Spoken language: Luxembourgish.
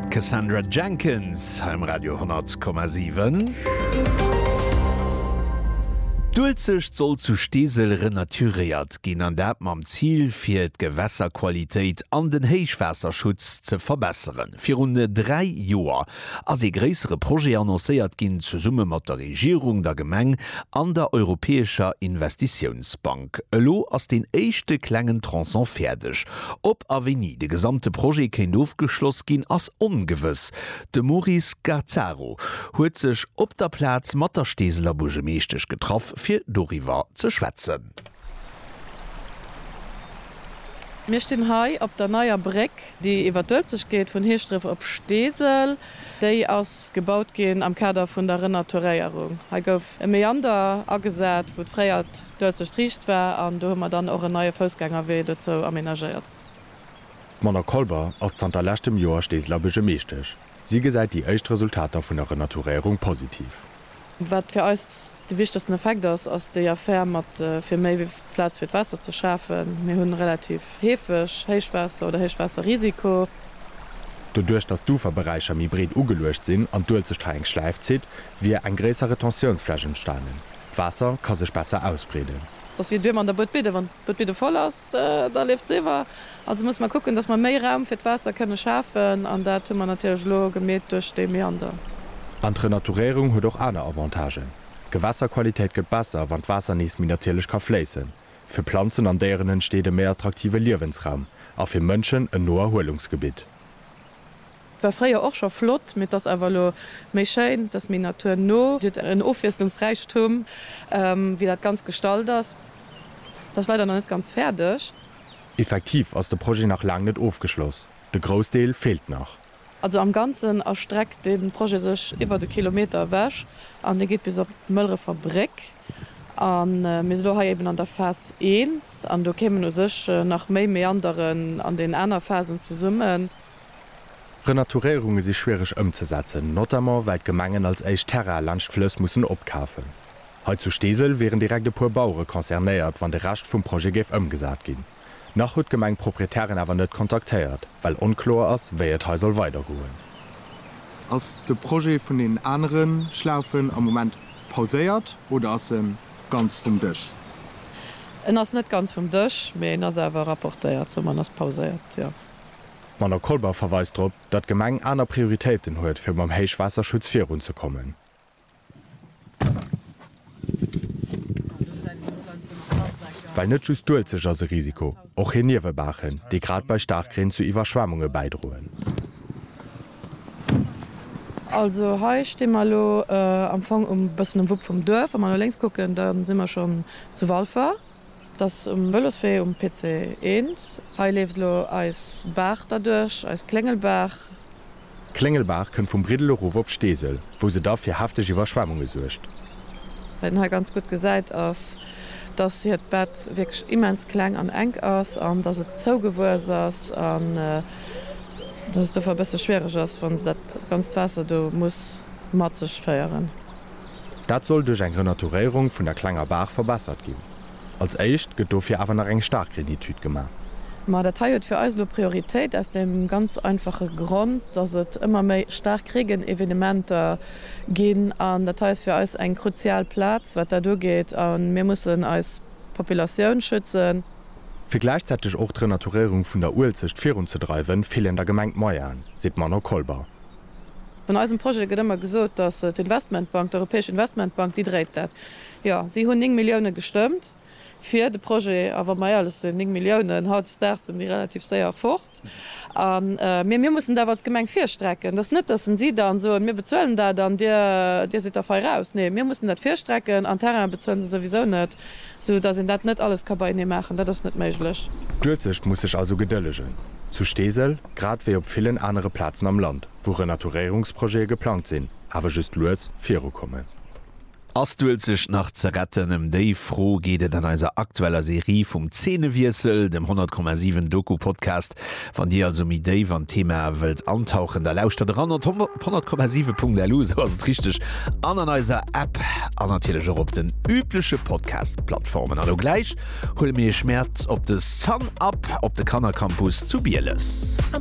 D'Cassandra Jenkins hei um Radio 100,7. D'Uelzecht soll zu Steesel renaturéiert ginn, an dat mam Zil fir d'Gewässerqualitéit an den Héichwaasserschutz ze verbesseren. Virun dräi Joer ass ee gréissere Projet annoncéiert ginn, zesumme mat der Regierung, der Gemeng an der Europäescher Investitiounsbank. Elo ass deen éischte klengen Tronçon fäerdeg. Ob a wéini de gesamte Projet kéint ofgeschloss ginn, ass ongewëss. De Maurice Gazzaro huet sech op der Plaz mat der Steeseler Buergemeeschtesch getraff, fir doriwwer ze schwätzen. Mir stinn hei op der Neier Bréck. Déi iwwer d'Uelzechtgeet vun Heeschdref op Steesel, déi ass gebaut ginn am Kader vun der Renaturéierung. Hei gouf e Meander agesat, wou fréier d'Uelzecht riicht war, an do hu mer dann och en neie Foussgängerwee dozou amenagéiert. D'Mona Kolber ass zanter leschtem Joer Steeseler Buergermeeschtesch. Si gesäit déi éischt Resultater vun der Renaturéierung positiv. Wat fir eis de wichtegsten Effekt ass, ass déi Affär mat fir méi Plaz fir d'Waasser ze schafen. Mir hu relativ heefeg Héichwaasser oder Héichwaasserrisiko. Doduerch, datt d'Uferberäicher méi breet ugeluecht sinn an d'Uelzecht hei eng Schläif zitt, wier eng gréisser Retentiounsfläch entstanen. D'Waasser ka sech besser ausbreeden. Dass wier d'Uemer an der Buedbidde. Wann d'Buedbidde voll ass, da leeft se iwwer. Also musse mer kucken, dass mer méi Raum fir d'Waasser kënne schafen, an dat hu mer natierlech elo gemeet duerch dee Meander. An d'Renaturéierung huet och aner Avantagen. D'Gewässerqualitéit gëtt besser, wann d'Waasser nees méi natierlech ka fléissen. Fir Planzen an Déieren entsteet e méi attraktive Liewensraum a fir Mënschen en no Erhuelungsgebitt. War fréier och scho flott, mee 't ass awer elo méi schéin, 't ass méi naturno. Et huet en Ofwiesslungsräichtum, wéi dat Ganzt gestalt ass. 't ass leider nach net ganz fäerdeg. Effektiv ass de Projet nach laang net ofgeschloss, de Groussdeel feelt nach. Also am Ganzen erstreckt de Projet sech iwwert e Kilometer ewech an dee geet bis op d'Mëlrefer Bréck. A mir si elo hei eben an der Phas I an do kéimen u sech nach méi Meanderen an den aner Phasen zesummen. Renaturéierunge si schwiereg ëmzesetzen, notamment well d'Gemengen als éischt Terraine laanscht d'Flëss mussen opkafen. Hei zu Steesel wieren direkt e puer Bauere concernéiert, wann de Rescht vum Projet géif ëmgesat ginn. Nach huet d'Gemeng d'Proprietären awer net kontaktéiert, well onkloer ass, wéi et hei soll weidergoen. Ass de Projet vun deenen anere Schlaufen am Moment pauséiert oder ass e ganz vum Dësch? En ass net ganz vum Dësch, mee en ass awer rapportéiert, somme en ass pauséiert, jo. D'Manon Kolber verweist drop, datt d'Gemeng aner Prioritéiten huet, fir mam Héichwaasserschutz virunzekommen. Well net just d'Uelzecht ass e Risiko, och hir Niewebaachen, déi grad bei Staarkreen zu Iwwerschwemmunge bäidroen. Also hei sti mer elo am Fong e bëssen um Wupp vum Duerf. Wa mer no lénks kucken, da si mer schonn zu Walfer. Et ass um Vëloswee um PC 1. Hei leeft elo eis Baach derduerch, eis Kléngelbaach. D'Kléngelbaach kënnt vum Briddel erof op Steesel, wou se da fir hefteg Iwwerschwemmunge suergt. Wat een hei ganz gutt gesäit ass, dass hiert Bett wierklech immens kleng an enk ass an dass et zougewuess ass an dass et dofir e bësse schwiereg ass, wa se dat ganzt Waasser do muss mat sech féieren. Dat soll duerch eng Renaturéierung vun der klenger Baach verbessert ginn. Als éischt gëtt dofir awer nach eng Starkreenetüd gemaach. Ma dat hei huet fir eis elo Prioritéit aus deem ganz einfache Grond, dass et ëmmer méi Starkreegenevenementer ginn. An dat hei ass fir eis eng kruzial Plaz, wat dat ugeet. A mir mussen eis Populatioun schützen. Fir gläichzäiteg och d'Renaturéierung vun der Uelzecht virunzedreiwen, feelen der Gemeng d'Moyenen, seet d'Manon Kolber. An eisem Projet gëtt ëmmer gesot, datt d'Investmentbank, d'Europäesch Investmentbank, déi dréit dat. Jo, si hunn 9 Milliounen gestëmmt fir de Projet. A wa mer éierlech sinn, 9 Milliounen, hautdesdaags sinn déi relativ séier fort. A mir, mir mussen et awer als Gemeng virstrecken. Et ass net, datt si dann soen, mir bezuelen dat an dir, dir sidd da fei raus. Nee, mir mussen dat virstrecken. An Terrainen bezuelen se souwisou net, soudatt een dat net alles ka beienee maachen. Dat ass net méiglech. D'Uelzecht muss sech also gedëllegen zu Steesel, grad wéi op villen anere Plazen am Land. wou Renaturéierungsprojete geplangt sinn, awer just lues virukommen. Ass d'Uelzecht nach ze retten? Ëm déi Fro geet et an eiser aktueller Serie vum Zeenewiessel, dem 100,7 Doku-Podcast. Wann Dir also méi déif an d'Thema wëllt antauchen, da lauschtert eran op 100,7.lu, esou ass et richteg, an an eiser App an natierlech och op den übleche Podcast-Plattformen. An elo gläich huele mir Iech mäert op de Sun Up op de Kannercampus zu Bieles.